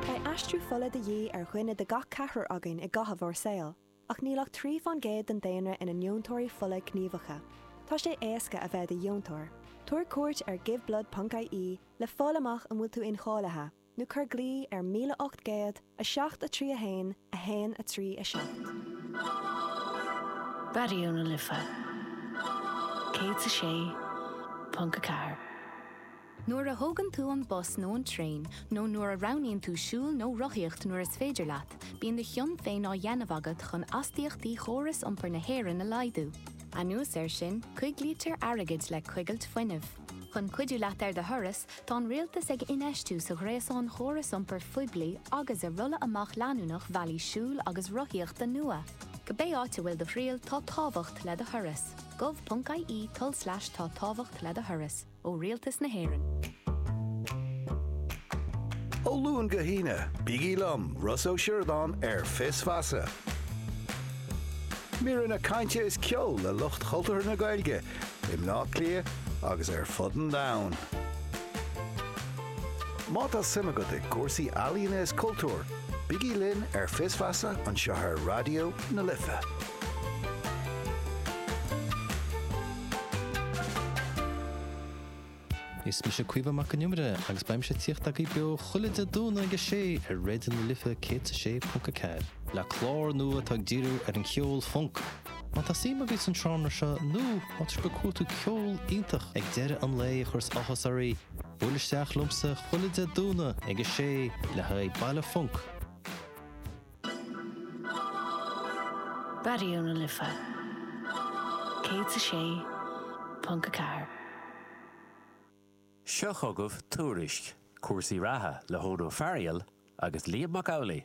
Beidh aistriú fola de dhíth ar dhuine de gach ceathrar againn i gcaitheamh ár saoil, ach níl ach trí fán gcéad den daonra ina ndeontóirí fola gníomhacha. Tá sé éasca a bheith i do dheontóir. Tabhair cuairt ar Giveblood ponc IE le fáil amach an bhfuil tú incháilithe, nó cuir glao ar 1800 3 1 1 3 7. Raidió na Life 106.4. Nuair a thógann tú an bus nó an traein, nó nuair a roghnaíonn tú siúl nó rothaíocht nuair is féidir leat, bíonn do chion féin á dhéanamh agat chun astaíochtaí chóras iompair na hÉireann a laghdú. Anuas air sin, coiglítear airgead le coigilt fuinnimh. Chun cuidiú leat ar do thuras, tá an rialtas ag infheistiú sa ghréasán chóras iompair phoiblí agus i rolladh amach leanúnach bhealaí siúil agus rothaíochta nua. Cibé áit a bhfuil do thriall, tá tábhacht le do thuras. gov.ie tulslais tá tábhacht le do thuras. ó Rialtas na hÉireann. Ó Luan go hAoine, bígí liom, Ross Ó Sioradáin, ar Fios Feasa. Míreanna cainte is ceoil le lucht chultúrtha na Gaeilge i mBleá Cliath agus ar fud an domhain. Má tá suim agat i gcúrsaí ealaíona is cultúir, bígí linn ar Fios Feasa anseo ar Raidió na Life. Is mise Caoimhe Mac an Iomaire agus beidh mise ag tíocht agaibh beo chuile Dé Domhnaigh ag a sé ar Raidió na Life céad is a sé ponc a ceathair. le clár nua atá ag díriú ar an cheol func. Má tá suim agaibh san seánra seo nó má tá sibh ag cuartú ceol iontach ag deireadh an lae a chuireas áthas oraibh, buail isteach liomsa chuile Dé Domhnaigh ag a sé le haghaidh baile func. Raidió na Life 106.4. Seo chugaibh Tuairisc cúrsaí reatha le hEoghan Ó Fearghail agus Liam Mac Amhlaigh.